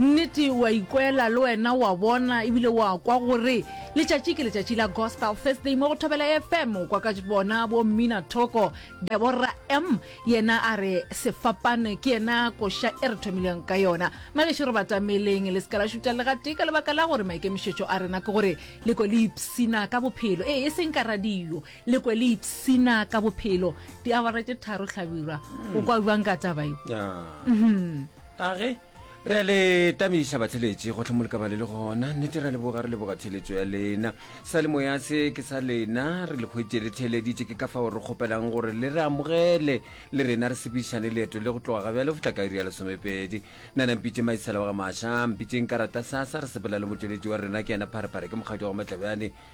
Nnete, o a ikwela le wena, o a bona ebile o a kwa gore letšatši ke letšatši la Gospel Thursday mo go Thobela FM. O kwa ka bona bo Mmina Thoko, Deborah M. Yena a re sefapane ke yena koša e re thomileng ka yona. Magešo re batameleng le se ka la šuta le gatee ka lebaka la gore maikemišetšo a rena ke gore le kwe le ipshina ka bophelo. Ee, e seng ka radio, le kwe le ipshina ka bophelo. Diawara tše tharo hlabirwa, o kwa bjang ka taba ye? Ah. Mhm. a ge re a le tabiša batheletši gotlhe mo lekaba le le gona nnete re a leboga re leboga theletšo ya lena sa le moya se ke sa lena re le kgwetše le theeleditše ke ka fao re kgopelang gore le re amogele le rena re sepišane leeto le go tloga ga bjale go tla ka iri ya lesomepedi nna na mpitše maisela wa ga maša mpitšeng ka rata sasa re sepela le motšweletši wa rena ke yena pharephare ke mokgadi wa go matlabjane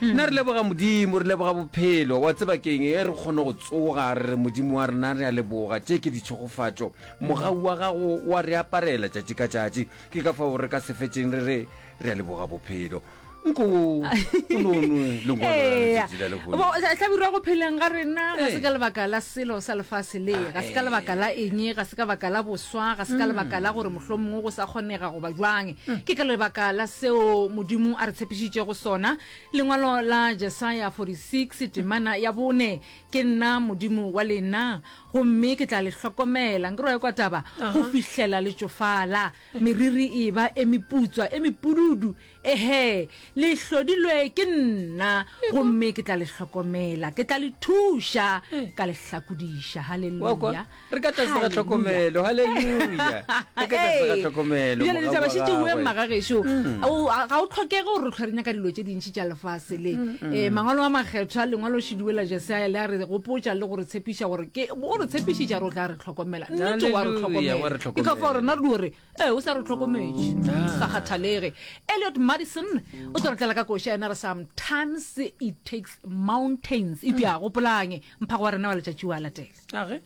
Nna re leboga Modimo, re leboga bophelo. Wa tseba keng, e re kgone go tsoga, re re, Modimo wa rena, re a leboga. Tše ke ditšhegofatšo. Mogau wa gago o a re aparela tšatši ka tšatši. Ke ka fao re ka se fetšeng re re, Re a leboga bophelo. Nko o no nwe lengwalo la letšatši la lehono. Bo, sa- hlabirwa go pheleng ga rena ga se Ee. ka lebaka la selo sa lefase le ga se ka Ee. lebaka la eng ga se ka baka la boswa ga se ka lebaka la gore mohlomongwe go sa kgonega goba jwang Ke ka lebaka la seo Modimo a re tshepišitšego sona, lengwalo la Jesaya 46, Temana ya bone, ke nna Modimo wa lena, gomme ke tla le hlokomela, nke roe kwa taba, go fihlela le tšofala, meriri e ba e meputswa, e mepududu, ehe, le hlodilwe ke nna, gomme ke tla le hlokomela, ke tla le thuša, ka le hlakudiša. Haleluya! re ka tlase ga tlhokomelo halleluja re ka tlase ga tlhokomelo bjale ditaba še tšeueng magagešo mm. ga o tlhokege gore re tlhwa re nyaka dilo tše dintšhi tša lefase le um mm, mm. mangwalo a makgethwa lengwalo šidiwe la jesaya le a re gopotša le go re tshepiša gore ke o re tshepišitša re o tla re tlhokomela nnete wa re tlhokomela ke ka fa gore na dilo re ee o sa re tlhokometše ah. sa kgathalege eliot madison o tlo re tlela ka koša yena re sometimes it takes mountains e bja gopolange mphago wa rena wa letšatši wa latela age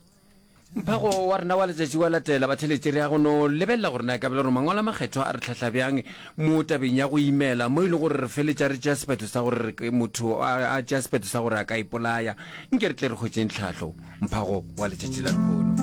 mphago wa rena wa letšatši wa latela batheletše re ya go no lebelela gore na kabelo gore mangwalo a makgetho a re tlhahla bjang mo tabeng ya go imela mo e le gore re feletša re tšea sephetho sa gore motho a tšea sephetho sa gore a ka ipolaya nke re tle re kgwetseng tlhahlo mphago wa letšatši la lehono